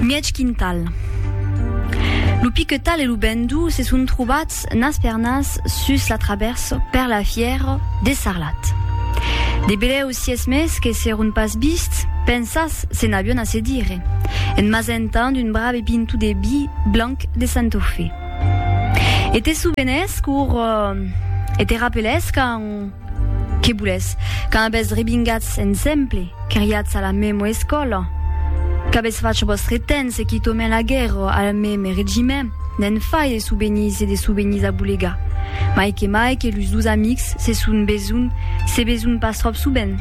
Mièg quintal. Lo piquetal e lo bendou se son trobats nas per nas sus la travèrsa per la fièra de Sarlat. De belèus sies mes que s'èron pas vists, pensas se n'avion a se dire, en m'asentant un brave pinto de vi blanc de Santofé. E te sovenès qu'aur e te rapelès quand, Que boulètz? Quand avètz rebingatz ensemble, queriatz a la mèma escòla? Qu'avètz fach vòstre temps e quitaument la guèrra al mème regiment? Ne'n fai de souvenís e de souvenís a bolegar. Mai que mai que los dos amics se son besonh, se besonh pas tròp sovent.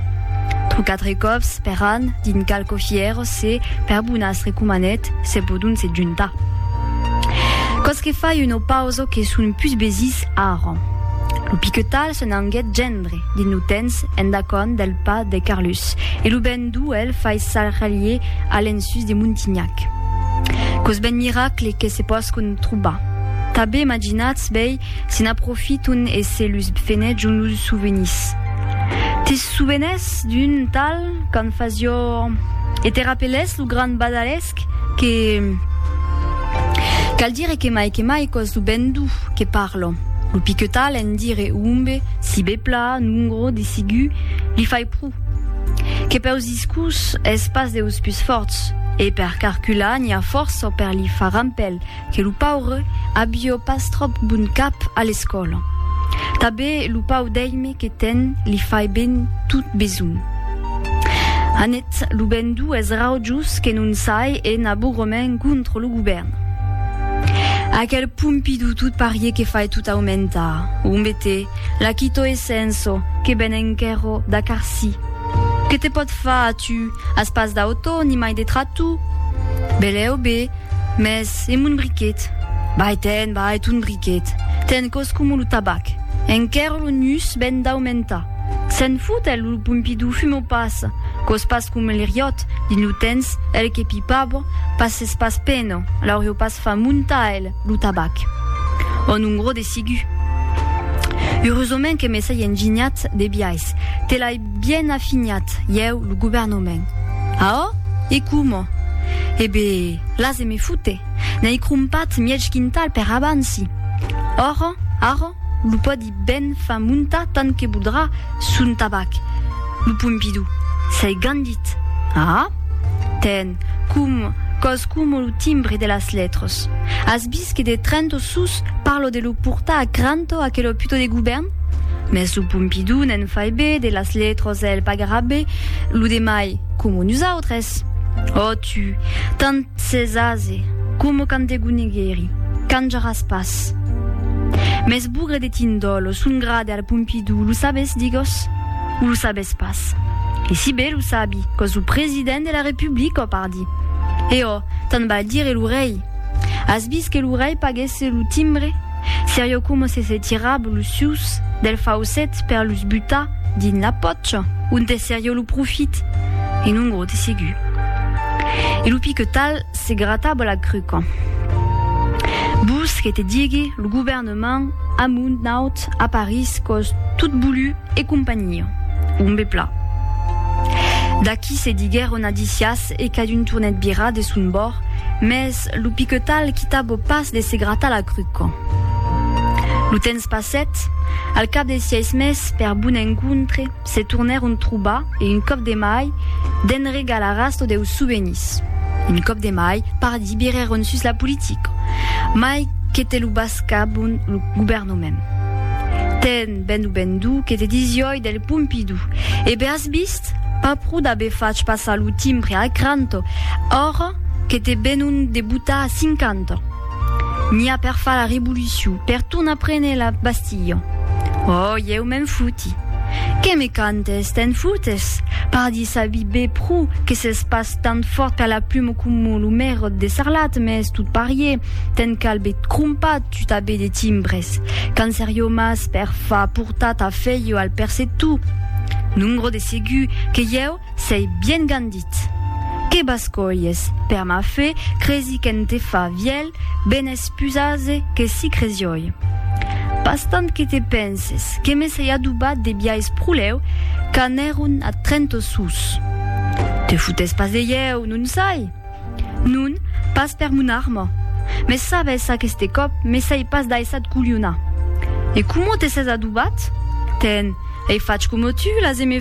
Trò quatre còps per an, dins qualques fièras, se, per bonas recomanèt, se podon se juntar. Quò's que fai una pausa que son pus besís, Ara, lo piquetal se n'anguèt gendre dins lo tens endacònt del pas de Carlus e lo ben duu el fais s'arrelier a l'ensús de Montignac. Quos ben miracle que se pòscon trobar! Tabé imaginatz bèi se n'aprofiton e se lus fenèjon los souvenís. Te souvenès d'un tal qu'en fasió e te rapelès lo grand badalés? Esc que cal dire que mai que mai cos lo ben du que parlo. Lo piquetal en dire umbe, si be pla, nungro, desigu, li fai pru. Que peus discus es pas deus pus forts, e per carcular n'i a força per li far rampel, que lo paure abió pas tròp bon cap a l'escòla. Tabé lo pau d'èime que ten li fai ben tot besonh. Anet lo ben duu es raujos que non sai e n'a bogromen contra lo govèrn. Aquel Pompidou tot parier que fai tot aumentar. Ombete, la quito e senso que ben enquerro d'a carsi. Que te pòt far a tu? As pas d'autò ni mai de tratou? Belèu be, Mès e mon briquet? Vai ten, vai ton briquet. Ten cos coma lo tabac. Enquèr lo nus ven d'aumentar. Se'n fot el, lo Pompidou fuma pas. Cos pas coma l'Iriòt, dins lo tens, el que pipava, pas s'es pas pena, l'aurió pas fa montar el, lo tabac. Òn un gros desigu. Eurosament que me sai enginhat de biais. Te l'ai. Bien afinhat, ieu, lo governament. A ò? E coma? E be, las e me fute, n'ai crompat mièg quintal per abansi. Ora, ara, lo pòdi ben far montar tant que voldrà son tabac, lo Pompidou, s'ai gandit. A? Ten, com, còs coma lo timbre de las letres. As vist que de Trento sus parlo de lo portar a Cranto aquel òpito de govèrn? Mès lo Pompidou ne'n fai be, de las letras el pagarà be, lo demai, coma nosautres. Ò tu, tant s'es aze, coma quand te goneguèri, canjaràs pas. Mès bugre de tindòlo, son grade al Pompidou, lo sabes, digós? O lo sabes pas? E si be lo sabi, qu'os lo president de la Republica, pardi. E ò, tant val dire lo rei. As vist que lo rei paguèsse lo timbre? Serio coma se se tirab los sucs del faucet per los butar dins la pòcha onte serio lo profit e non gros de segur. E lo piquetal se grataba la cruca. Vos que te digue lo govèrnament amunt naut a París còs tot bulu e companhia. Ombe pla. D'aquí se diguèron adicias e cadun tornèt virar de son bòrd, mès lo piquetal quitava pas de se gratar la cruca. Lo temps passèt, al cap de sièis mes, per bon encontre, se tornèron trobar e un còp de mai, de'n regalaràs lo deu souvenís, un còp de mai, pardi, virèron sus la politica, mai que te lo bascabon lo governament. Ten ben o ben du que te disiòi del Pompidou, e be as vist? Cat. Pas pro d'aver fach passar lo timbre a Cranto, ora que te venon de botar a cinquanta. N'i a per far la revolucion, per tornar prene la Bastilha. Oh, ieu me'n foti. Que me cantes, te'n fotes? Pardi sabi be pro que s'es pas tant fòrt qu'a la pluma coma lo merot de Sarlat, mès tot parier, te'n cal be crompar, Tutabe de timbres. Cancerio mas per fa portar ta feio al percetu. Nungro de segu que ieu sei bien gandit. Que bascolhes, per ma fe, cresi qu'en te fa vièlh ben es pus ase que si cresioi. Pas tant que te penses, que me sei adobat de biais proleu qu'anèron a Trento sus. Te futes pas de ieu, non sai? Non, pas per mon arma. Mes sabes, aqueste còp me sai pas daissat colhonar. E coma te ses adobat? Ten, ei fach coma tu, las e me.